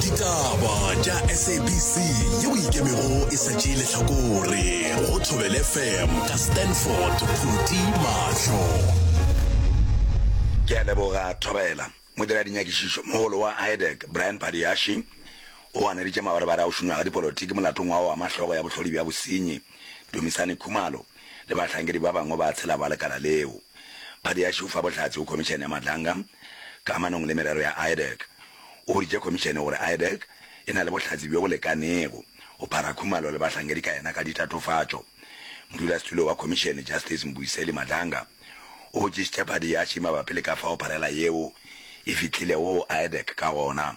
ditaba tša sabc yeo e ikemego e sa tšee lehlakore go thobel fm ka stanford khuti mahlo ke a leboga thobela modira dinyakišišo mogolo wa idec brian padiashi o ganeditše mabarebare a go šunywa ga dipolotiki molatong wa go ama hlogo ya bohlodi bja bosenyi dumisane khumalo le bahlankedi ba bangwe ba tshela ba lekala leo padiashi o fa bohlatse go khomišene ya madlanga ka amanong le merero ya IADEC. O boditše Khomišene gore IADEC e na le bohlatse bjo bo lekanego go phara khumalo le bahlankedi ka yena ka ditatofatšo. Modulasetulo wa Khomišene, Justice Mbuyiseli Madlanga, o botšišitše Phadiyachi mabapi le ka fao pharela yeo e fihlilego go IADEC ka gona.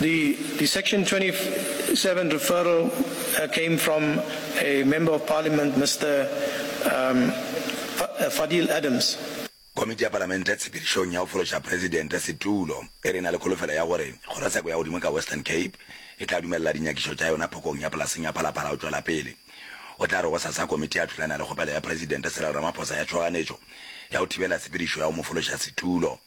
The the section 27 referral came from a member of parliament Mister um Fadil Adams. Komiti ya Palamente tshepedišong ya go fološa Presidente setulo e re e na le kholofelo ya gore kgorotsheko ya godimo ka Western Cape e tla dumelela dinyakišo tša yona phokong ya polaseng ya Phalaphala go tšwela pele. O tla re gosasa komiti ya thulana le kgopelo ya Presidente Cyril Ramaphosa ya tšhoganetšo ya go thibela tshepedišo ya go mo fološa setulo.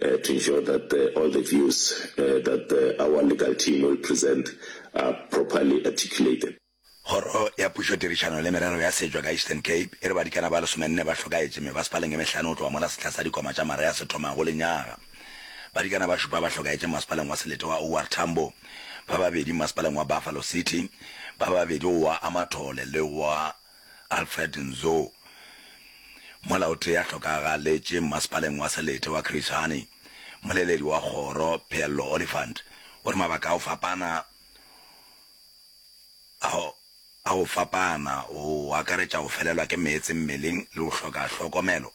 to ensure that all the views that our legal team will present are properly articulated. Kgoro ya Pušo Tirišano le Merero ya Setšo ka Eastern Cape e re badikana ba lesomenne ba hlokaetše mebasepaleng e mehlano go tloga mola sehla sa dikoma tša Maria se thomago lenyaga. Badikana ba šupa ba hlokaetše mmasepaleng wa Selete wa OR Tambo, ba babedi mmasepaleng wa Buffalo City, ba babedi go wa Amathole le wa Alfred Nzo, mola o tee a hlokagaletše mmasepaleng wa Selete wa Chris Hani, moleledi wa kgoro Pheello Oliphant o re mabaka a go fapana a go fapana go akaretša go felelwa ke meetse mmeleng le go hloka hlokomelo.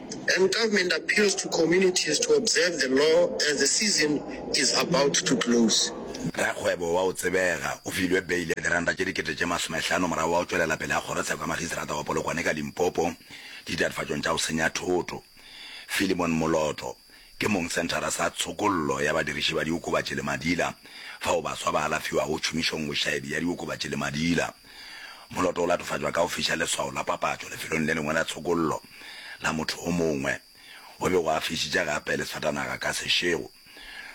And government appeals to communities to observe the law as the season is about to close. Rakgwebo wa go tsebega o filwe beile ya diranta tše dikete tše masomehlano morago ga go tšwelela pele ga kgorotsheko ya makgiseterata wa Polokwane ka Limpopo ditatofatšong tša go senya thoto. Philemon Moloto ke mong senthara sa tshokollo ya badiriši ba diokobatši le madila fao baswa ba alafiwago tšhomišong bošaedi ya diokobatši le madila. Moloto o latofatšwa ka go fiša leswao la papatšo lefelong le lengwe la tshokollo la motho o mongwe. O be o a fišitše gape le sefatanaga ka sešego.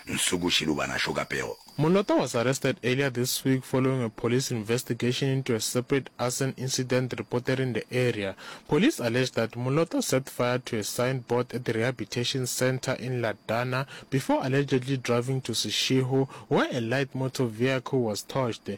Nsuku Shilubana Shokapego. Moloto was arrested earlier this week following a police investigation into a separate arson incident reported in the area. Police allege that Moloto set fire to a sign board at the Rehabilitation Centre in Ladana before allegedly driving to Seshego where a light motor vehicle was torched.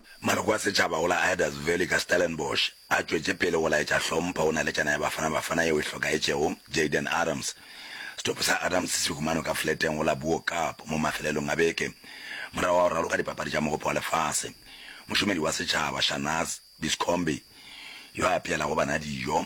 Maloko a setšhaba go la Aydas Valley ka Stellenbosch a tšwetše pele go laetša hlompho go naletšana ya Bafana Bafana yeo e hlokaetšego Jayden Adams. Setopo sa Adams se humano ka fleteng go la Buo Cup mo mafelelong a beke morago ga go raloka dipapadi tša Mogopo wa Lefase. Mošomedi wa setšhaba Shanaz Biscombe yo a apeelago bana dijo,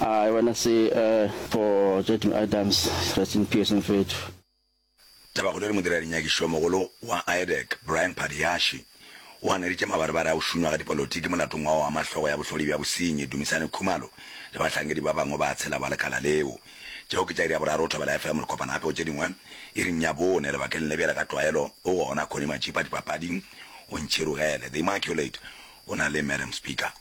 I wanna see a for Jackie Adams, rest in peace mfethu. Tabakgolo e re modirarinyakišomogolo wa IADEC, Brian Phadiashi, o ganeditše mabarebare a go šunywa ga dipolotiki molatong wa go ama hlogo ya bohlodi bja bosenyi Dumisani Khumalo le bahlankedi ba bangwe ba tshela ba lekala leo. Tšeo ke tša iri ya boraro thobela ya FM Lekopana gape go tše dingwe iring ya bone lebakeng le bjale ka tlwaelo o gona Connie Matšipa dipapading o ntšhirogele The Immaculate o na le Madam Speaker.